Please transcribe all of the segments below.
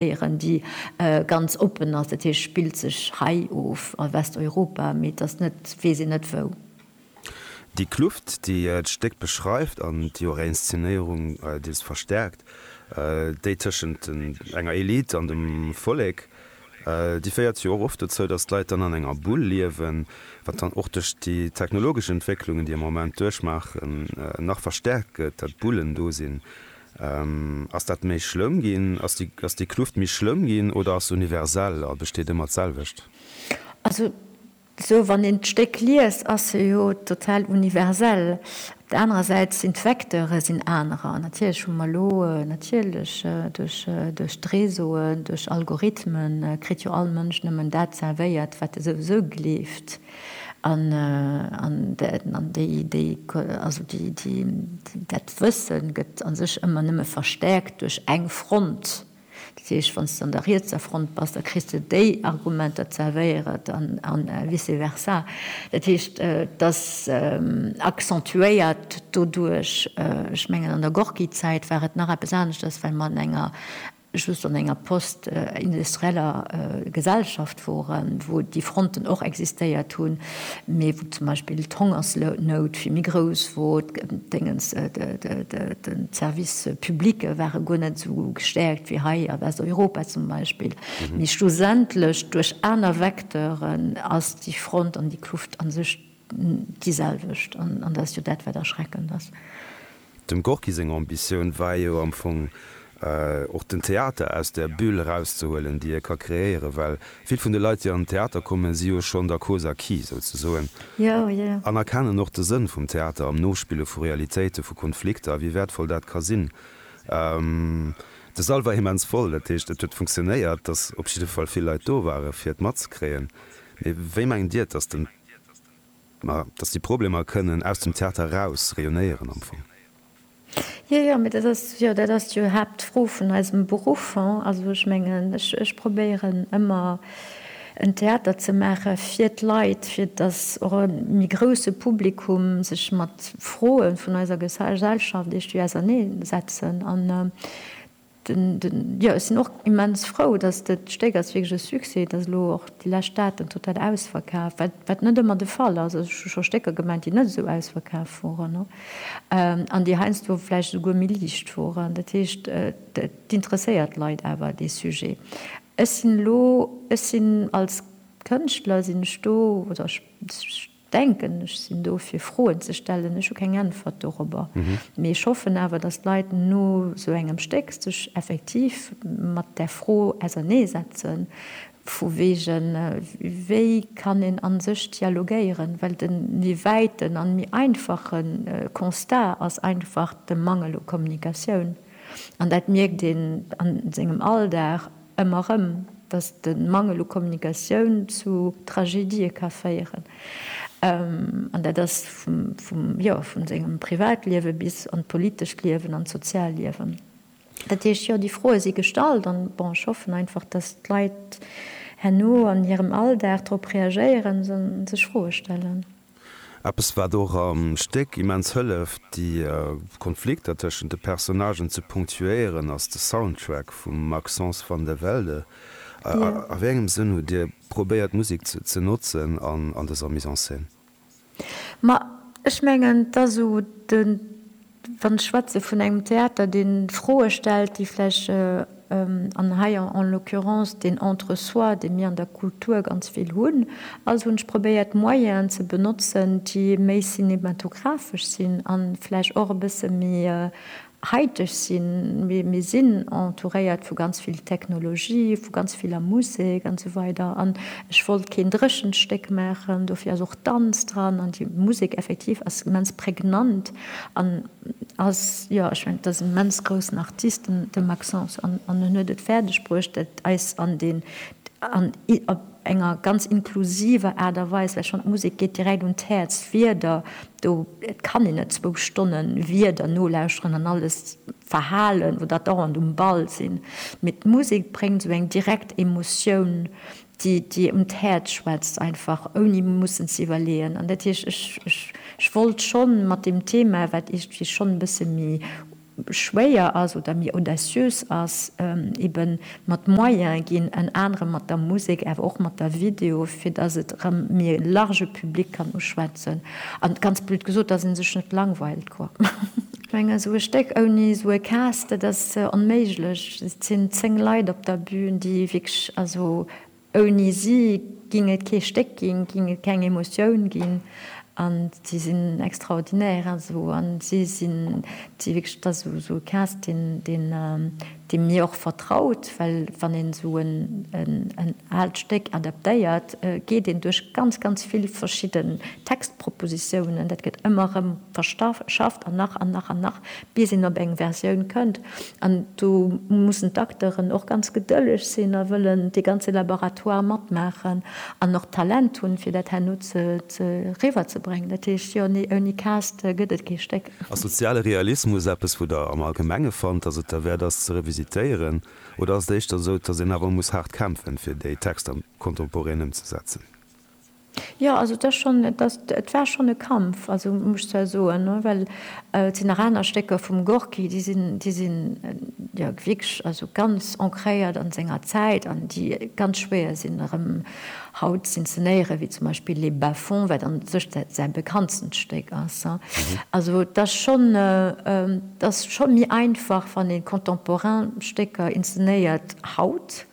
Léieren, déi ganz oppen ass, dat heescht spillt sech hei of a Westeuropa, mee et ass net weess een net wou. Déi Kluft, déi d'Stéck beschreift an déi och Inszenéierung deels verstäerkt, déi tëschent enger Elite an dem Vollek, déi féiert jo och oft dozou, datt d'Leit dann an enger Bull liewen, wat dann och duerch déi technologesch Entwécklungen, déi am Moment duerchmaachen, nach verstäerkt gëtt, datt Bullen do sinn, Ass dat méi schlëmm ginn? Ass déi Kluft méi schlëmm ginn oder ass se universell a besteet ëmmer d'selwecht? Also esou wann een d'Stéck liest, ass se jo total universell. Op der anerer Säit sinn d'Vecteure sinn anerer. Natierlech hu mer elo, natierlech duerch d'Reseauen, duerch Algorithmen, kritt jo all Mënsch nëmmen dat zervéiert, wat e souwisou gleeft. An dat Wësse gëtt a sech ëmmer nëmme verstäerkt duerch eng Front. Dat heescht, wann s de an der rietser Front bass, da kriss de déi Argumenter zerwéiert a vice versa. Dat heescht, et ass accentuéiert doduerch. Ech mengen, an der Gorki-Zäit war et nach eppes aneschters, well mer an enger just an enger post-industrieller Gesellschaft woren, wou déi Fronten och existéiert hunn, mee wou zum Beispill d'Hongersnout vill méi grouss wor, d'Déngens, de Service publique ware guer net esou gestäerkt wéi hei a Westeuropa zum Beispill. Mee schlussendlech duerch aner Vecteuren ass déi Front an déi Kluft a sech déi selwecht, an dat ass jo dat, wat erschreckend ass. Dem Gorki seng Ambitioun war jo am Fong och den Theater aus der Bulle erauszehuelen, déi e ka kreéieren, well vill vun de Leit, déi an den Theater kommen, si jo schonn der Cause acquis souzesoen an erkennen och de Sënn vum Theater am Nospille vu Realitéite vu Konflikter a wéi wäertvoll dat ka sinn. De Sall war immens voll, dat heescht et huet funktionéiert, dass op jidde Fall vill Leit do ware fir et matzekréien. Mee wéi mengt Dir et, dass den. Mä datt déi Problemer kënnen aus dem Theater eraus rayonnéieren am Fong. Jo, jo, mä dat ass jo, dat ass jo Haaptfro vun eisem Beruff. Also ech mengen, ech probéieren ëmmer en Theater ze maache fir d'Leit, fir datt och e méi grouse Publikum sech mat Froe vun eiser Gesellschaft eescht wéi ausernee setzen an Jo, ech sinn och immens frou, datt dat Stéck ass wierklech e Succès. Et ass elo och déi lescht Daten total ausverkaf, wat net ëmmer de Fall ass. Also ech hu scho Stécker gemengt, déi net esou ausverkaf woren an déi heiansdo vläicht esouguer méi liicht woren. Dat heescht, et interesséiert d'Leit awer, dee Sujet. Ech sinn elo, ech sinn als Kënschtler sinn ech do oder ech, denken, ech sinn do fir Froen ze stellen, ech hu keng Äntwert dorobber, mee ech hoffen awer, datt d'Leit no esou engem Stéck sech effektiv mat där Fro auserneesetzen, vu wegen wéi kann een a sech dialogéieren, well de méi wäiten a méi einfache Constat ass einfach de Mangel u Kommunikatioun, an dat mierkt een a sengem Alldag. Ëmmer erëm, dass de Mangel u Kommunikatioun zu Tragedië ka féieren. An dat ass vum, jo, vu sengem Privatliewe bis an d'politescht Liewen, an d'Sozialliewen. Dat heescht, jo, déi Froe si gestallt. An, bon, ech hoffen einfach, dass d'Leit herno an hirem Alldag drop reagéieren an sech Froe stellen. Eppes wat och am Stéck immens hëlleft déi Konflikter tëschent de Personnagen ze ponctuéieren ass de Soundtrack vum Maxence Van de Velde. A wéi engem Sënn hutt Dir probéiert Musek ze notzen an dëser Mise en scène? Ma ech mengen, dass u de Wann ech schwätze vun engem Theater, dee Froe stellt, déi vläicht, an hei en l'occurrence deen Entre-soi, dee mir an der Kultur ganz vill hunn, also hunn ech probéiert Moyenen ze benotzen, déi méi cinematographesch sinn a vläicht och e bësse méi haiteg sinn. Mir sinn entouréiert vu ganz vill Technologie, vu ganz viller Musek an esou weider an ech wollt keen dréchent Stéck maachen. Dofir ass och Danz dran an déi Musek effektiv ass immens prägnant. An ass, jo, ech mengen, et ass en immens groussen Artist, de Maxence, an en huet et fäerdeg bruecht, et eis an deen, an op enger ganz inklusiver Aart a Weis, well schonn d'Musek geet direkt un d'Häerz, d'Wierder do, et kann een net zwou Stonne Wierder nolauschteren an alles verhalen, wou dat dauernd um Ball sinn, mee d'Musek bréngt esou eng direkt Emotioun déi un d'Häerz schwätzt einfach ouni mussen ze iwwerleeën. An dat heescht, ech wollt scho mat deem Thema, wat iergendwéi schonn e bësse méi schwéier ass oder méi audaciös ass, eben mat Moyen ginn, ënner anerem mat der Musek, awer och mat der Video, fir datt et erëm méi e large Public kann uschwätzen. An ganz blöd gesot, dass een sech net langweilt, quoi. Ech mengen, esou e Stéck ouni esou e Cast, dat ass onméiglech. Et sinn 10 Leit op der Bühn, déi wierklech, also ouni si géing et kee Stéck ginn, géing et keng Emotioun ginn. An si sinn extraordinaire, also. An si sinn, et si wierklech, et ass esou e Cast, deen, deen. déi mir och vertraut, well wann een esou en aalt Stéck adaptéiert, geet een duerch ganz, ganz vill verschidden Textpropositiounen, dat gëtt ëmmer erëm verschafft an nach an nach an nach, bis een op eng Versioun kënnt. An do mussen d'Acteuren och ganz gedëlleg sinn a wëllen dee ganze Laboratoire matmaachen an och d'Talent hunn, fir dat herno ze riwwerzebréngen. Dat heescht, jo, nee, ouni Cast gëtt et kee Stéck. Ass soziale Realismus eppes, wou Der am Allgemenge fannt, datt et derwäert ass ze revisitéieren, oder ass et éischter esou, datt een awer muss haart kämpfen, fir déi Texter contemporain ëmzesetzen? Jo, also et ass schonn, et ass, et war schonn e Kampf, also muss ech zwar soen, well et sinn nach aner Stécker vum Gorki, déi sinn, déi sinn jo wierklech also ganz ancréiert a senger Zäit an déi ganz schwéier sinn erëm, haut z'inzenéieren, wéi zum Beispill Les Bas-Fonds, wat an sech säi bekanntstent Stéck ass. Also et ass schonn, et ass scho méi einfach, wann ee contemporain Stécker inzenéiert haut,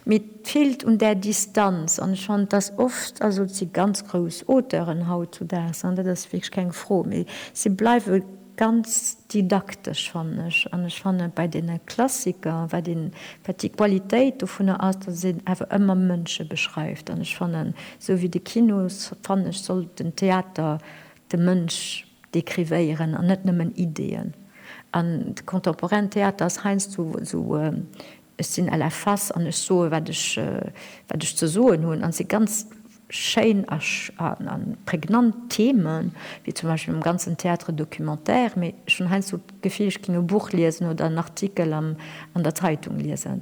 mee et feelt un där Distanz. An ech fannen, et ass oft, also et si ganz grouss Auteuren hautzudags, dat ass wierklech keng Fro, mee si bleiwe, Ganz didaktesch fannen ech. An ech fannen, bei deene Klassiker, wat een, wat déi Qualitéit dovunner ass, datt een awer ëmmer Mënsche beschreift. An ech fannen, esou wéi de Kino, fannen ech, sollt den Theater de Mënsch dekrivéieren an net nëmmen Ideeën. An de contemporainen Theater ass heiansdo esou Ech sinn LFS an ech soe wat ech ze soen hunn. An et si ganz schéin a prägnant Themen, wéi zum Beispill mam ganzen Théâtre documentaire, mee ech hunn heiansdo d'Gefill, ech géing e Buch liesen oder en Artikel an der Zeitung liesen.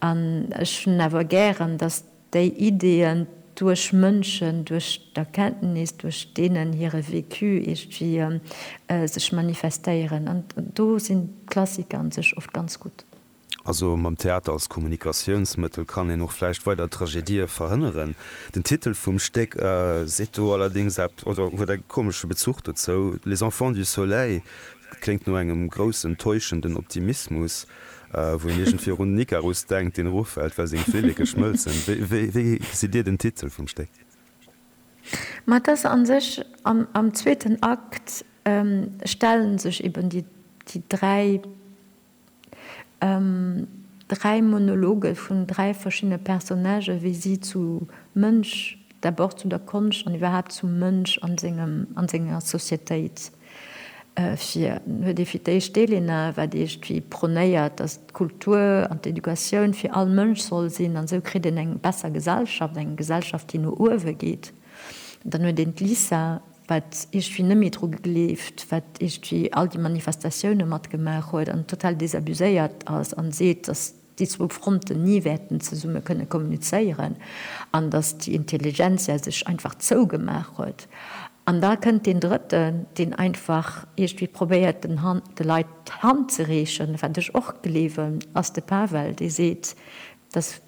An ech hunn awer gären, datt déi Ideeën duerch Mënschen, duerch d'Erkenntnis, duerch deenen hire Vécu iergendwéi sech manifestéieren. An do sinn d'Klassiker u sech oft ganz gutt. Also mam Theater als Kommunikatiounsmëttel kann een och vläicht weider Tragedië verhënneren. Den Titel vum Stéck seet do allerdéngs eppes oder huet e komesche Bezuch dozou, Les enfants du soleil kléngt no engem groussen, täuschenden Optimismus, wou een iergendwéi och un den Ikarus denkt, deen eroffält, well seng Flilleke schmëlzen. Wéi gesitt Dir den Titel vum Stéck? Ma et ass a sech, am zweeten Akt stelle sech eben déi dräi Dräi Monologe vun dräi verschiddene Personnagë wéi si zu Mënsch, d'abord zu der Konscht an iwwerhaapt zum Mënsch an sengem, an senger Societéit fir. Dann huet ee fir d'éischt d'Elena, wat iergendwéi pronéiert, datt d'Kultur an d'Educatioun fir all Mënsch soll sinn an esou kritt een eng besser Gesellschaft, eng Gesellschaft déi no uewe geet. Dann huet een d'Lisa, wat iergdwi net méi dru gegleeft, wat iergdwi all déi Manifestatioune matgemaach huet an total desabuséiert ass an seet, datt déi zwou Fronten ni wäerten zesumme kënne kommunizéieren an datt déi Intelligentsia sech einfach zougemaach huet. An da kënnt deen Drëtten, deen einfach iergdwi probéiert den Hand, de Leit d'Hand ze reechen, wat ech och gleewen ass de Pavel, dee seet, datt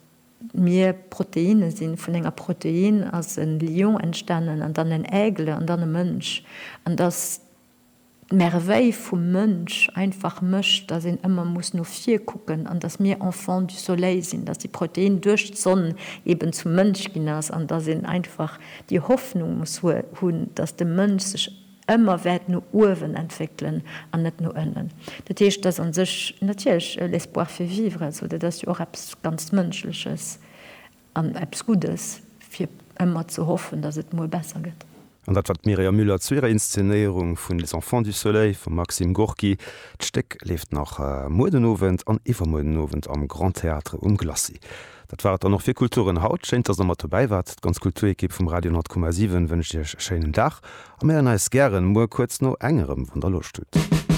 Mir Proteine sinn, vun enger Protein ass en Lion entstanen an dann en Aigle an dann e Mënsch. An dass d'Merveille vum Mënsch einfach mécht, dass een ëmmer muss no vir kucken an dass mir Enfants du Soleil sinn, dass déi Protein duerch d'Sonn eben zum Mënsch ginn ass an dass een einfach déi Hoffnung muss hunn, dass de Mënsch sech, ëmmer wäert no uewen entwéckelen an net no ënnen. Dat heescht, et ass a sech natierlech e l'espoir fait vivre, also dat ass jo och eppes ganz Mënschleches an eppes Guddes, fir ëmmer ze hoffen, datt et muer besser gëtt. An dat war d'Mireia Müller zu hirer Inszenéierung vun Les enfants du soleil vum Maxim Gorki. D'Stéck leeft nach muer den Owend an iwwermuer den Owend am Grand Théâtre um Glacis. Dat war et dann och fir Kulturen haut. Schéin, dass der mat dobäi waart, d'ganz Kulturekipp vum Radio 100,7 wënscht iech e schéinen Dag a mir héieren eis gären muer kuerz no eng erëm, wann der Loscht hutt.